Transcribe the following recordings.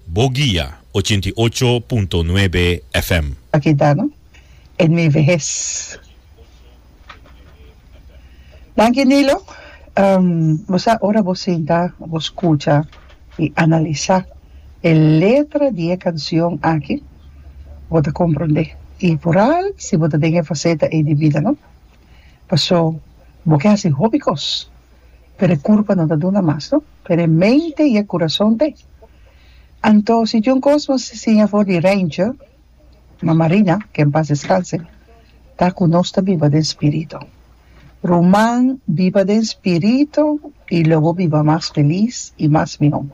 Bo guia ochenta i ocho punto nuebe FM. A kita no e nueve hes. Danki Nilo, bo sa ora bo sinta bo skucha i analisa e letra di e kansion aki bo ta komprondé i por al si bo ta den e faseta ei di bida no. Paso bo ke hasi hopi kos, pero e kurpa no ta duna mas no, pero e mente i e kurason t'e. Anto si John Cosmos ta siña for di Ranger, ma Marina, ke en pas deskanse, ta ku nos ta biba den spirito. Ruman, biba den spirito i lo bo biba mas felis i mas mihó.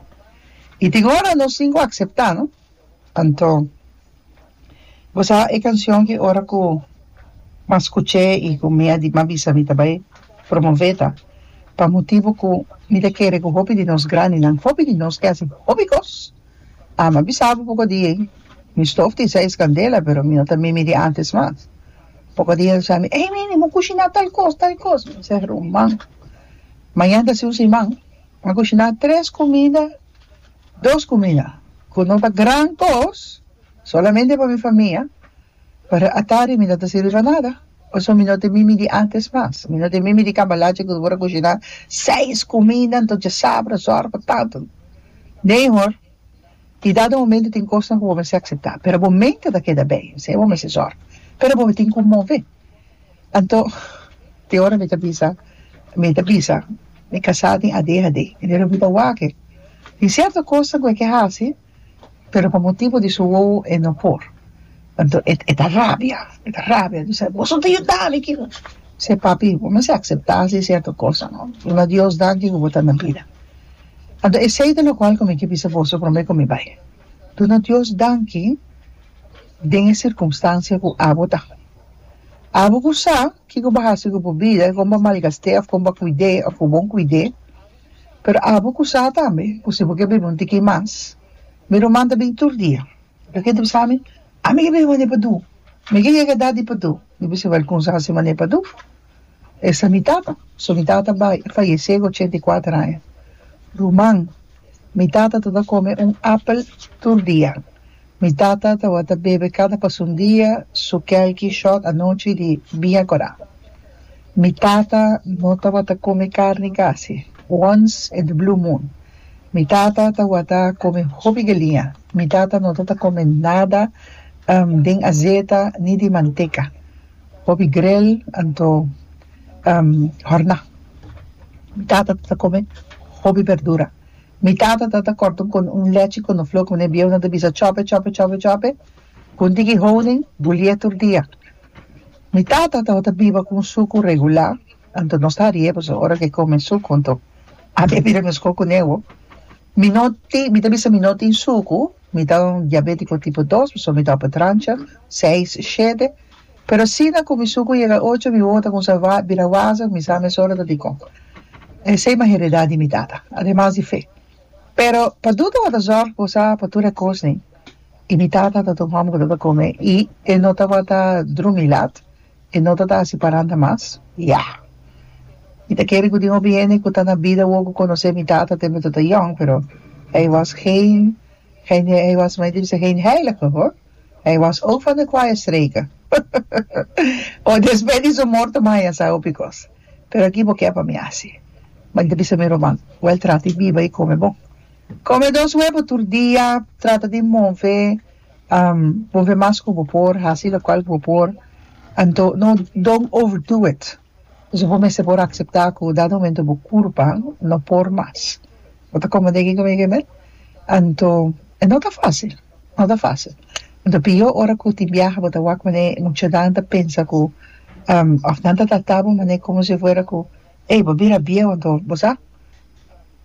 I tin ora nos tin ku akseptá no. Anto bo sa e cancion ki ora cu mi a scuch'e y cu mi a di ma bisa mi ta bay promove ta pa motibo cu mi ta kere cu hopi di nos grandinan hopi di nos ke haci hopi cos a mi a bisa bo poco dia mi stof tin seis candela pero mi no ta mimi di antes mas poco dia mi scami ey nene mi a cushina tal cos tal cos mi ser ruman mañana ta si un siman mi a cushina tres comida Dos kumida ku no ta gran kos, solamente pa mi famia, pero atari mi no ta sirbi pa nada. Pasobra mi no tin mimi di antes mas. Mi no tin mimi di cambalache ku por a kushiná seis kumida anto dje sabra, sòru pa tantu. Nee hoor. I dado momento tin kosnan ku bo mester akseptá, pero bo mente ta keda bèi, esei bo mester sòru, pero bo tin ku move. Anto, te ora mi ta bisa, mi ta bisa, mi kasá tin adhd, i mi Roberta wak e. Tin sierto kosa ku e ke hasi, pero pa motibu di su wowo e no por. Anto, e, e ta rabia, e ta rabia, bisa, Bos no ta yuda mi ki. Sey, Papi, bo mester aceptá si e sierto kosa, no? Bo na Dios danki ku bo ta na bida. Anto, esei ta lokual ku mi ke bisa boso promé ku mi bai. Duna Dios danki den e sirkunstansia ku abo ta. Abo bo sa kiko bo hasi ku bo bida, kon bo malgast'é òf kon bo kuid'é òf ku bon kuid'é, pero abo ku sa tambe ku si bo ke biba un tiki mas, mi ruman ta bin tur dia. Loke ta bisa mi? Ami ke biba manera padur, mi ke yega edad di padur, mi bisa wèl kumsa hasi manera padur. Esa mi tata. So mi tata bai a fayesé ku ochenta i kuater aña. Ruman, Mi tata tabata kome un apel tur dia. Mi tata tabata bebe kada pasun dia su kèlki shòt anochi di biña korá. Mi tata no tabata kome karni kasi, wons in de blue moon. Mi tata tabata kome hopi galiña. Mi tata no tabata kome nada den azeta ni di manteka. Hopi grel anto horna. Mi tata ta come hopi berdura. Mi tata ta ta corta un con un lechi conoflo cu ne bieunan ta bisa chope chope chope chope cu un tiki honing bulie tur dia. Mi tata ta ta biba cu un sucu regular anto nos ta riye pasobra ora ke come sucu anto a bebe de mescol cu ne ho. Mi no tin mi ta bisa mi no tin sucu. Mi ta un diabético tipo dos, pasobra mi tabata trancha seis, shete. Pero asina cu mi sucu yega ocho, mi wowo ta cuminsa bira waza, mi sa mesora ta dicon. Esey m'a heredá di mi tata, ademas di fe. Pero Padú tabata zorg bo sa pa tur e cosnan, i mi tata tabata un homber cu tabata come i e no tabata drumi lat. E no ta ta hasi paranda mas? Ya! Mi ta kere ku tin hopi hende ku ta na bida wou ku konosé mi tata tempu mi ta yòn, pero hei wòs geen hende, hei wòs mai difísil geen heilige hoor. Hei wòs ook van de kwaaie streken. O despè di su morto mai a sa hopi kos. Pero aki bo ke pa mi hasi? Ma mi ta bisa mi ruman, wèl trata i biba i kome bon. Kome dos wepo tur dia, trata di move Bo fe mas ku bo por hasi lokual ku bo por, anto no don't over do it. Pasobra bo mester por akseptá ku dado momento bo kurpa no por mas. Bo ta kome den kiko mi a keme? Anto e no ta fásil, no ta fásil. Anto pio ora ku tin biaha bo ta wak manera e muchanan ta pensa ku òf nan ta tratá bo manera komo si fuera ku ey bo a bira bieu anto bo sa.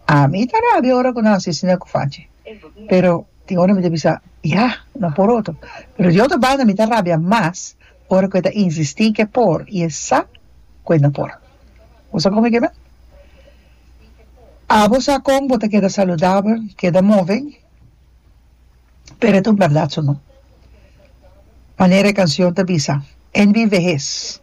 Ami ta rabia ora cu nan a sisi nan cu faci, pero tin ora mi ta bisa, Ya, no por otro. Pero di otro banda mi ta rabia mas ora cu e ta insisti cu e por y e sa cu e no por. Bo sa con mi keda? Abo sa con bo ta keda saludabel, keda move, pero e ta un berdad su no. Manera e cancion ta bisa, En mi vehez.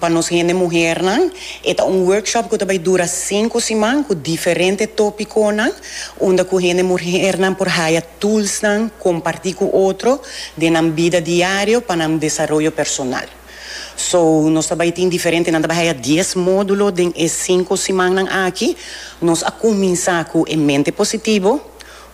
Pa nos hende muhernan e ta un workshop ku ta bai dura sinku siman ku diferente topikonan unda ku hende muhernan por haya toolsnan kompartí ku otro den nan bida diario pa nan desaroyo personal. So nos ta bai tin diferente nan ta bai haya dies módulo den e sinku simannan aki. Nos a kuminsá ku e mente positivo,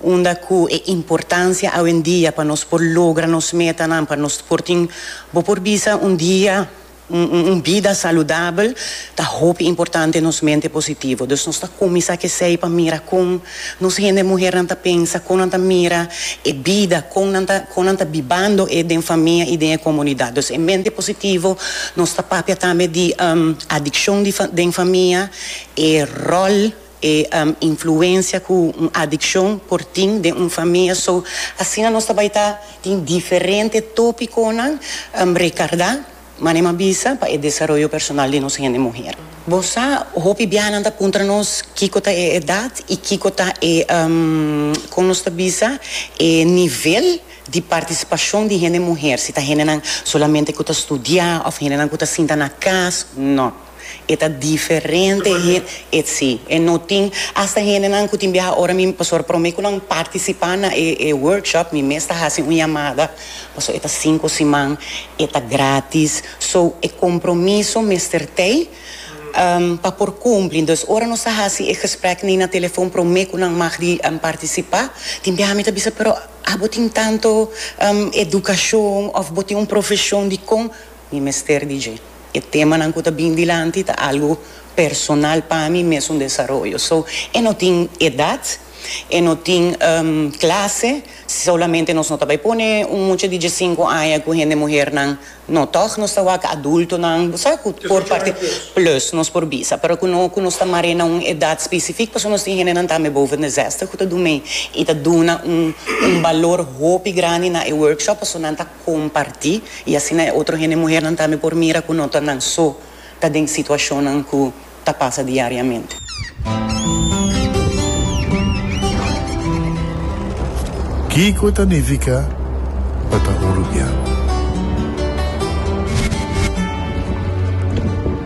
Unda cu e importancia awendia pa nos por logra nos metanan, pa nos por tin, bo por bisa, un dia, un, un bida saludabel, ta hopi importante nos mente positivo. Dus nos ta cuminsa c'esey pa mira con nos hende muhernan ta pensa, con nan ta mira e bida, con nan ta, con nan ta bibando e den famia y den e comunidad. Dus e mente positivo nos ta papia tambe di, um, adiccion di fa, den famia, e rol. e influencia cu un adiccion por tin den un famia so asina nos ta bay ta tin diferente topiconan recarda manera m'a bisa pa e desaroyo personal di nos hende muher. Bo sa hopi biahanan ta puntra nos kico ta e edad y kico ta e con nos ta bisa e nivel di participacion di hende muher si ta hendenan solamente cu ta studia of hendenan cu ta sinta na cas no. E ta diferente etc. E no tin hasta hendenan cu tin biaha ora mi pasobra prome cu nan participa na e workshop mi mes ta haci un yamada pasobra e ta cinco siman e ta gratis so e compromiso mester tey pa por cumpli entonces ora nos ta haci e gesprek ni na telefon prome cu nan mag di participa tin biaha mi ta bisa pero abo tin tanto educacion of bo tin un profesion dicon mi mester di dje. E temanan ku ta bin dilanti ta algu personal pa mi, mes un desaroyo. So, e no tin edat, e no tin klase, solamente nos no ta bai pone un mucha di diesinku aña ku hende muhernan, no, tòg nos ta wak adultonan, bo sa ku por parti plus nos por bisa, pero ku no ku nos ta mar'é na un edat spesifik pasobra nos tin hendenan tambe boven de zèstè ku ta dumi i ta duna un balor hopi grandi na e workshop pasobra nan ta comparti y asina e otro hende muhernan tambe por mira cu no ta nan so ta den situacionnan cu ta pasa diariamente. Kico ta nifica pa ta oruguiado?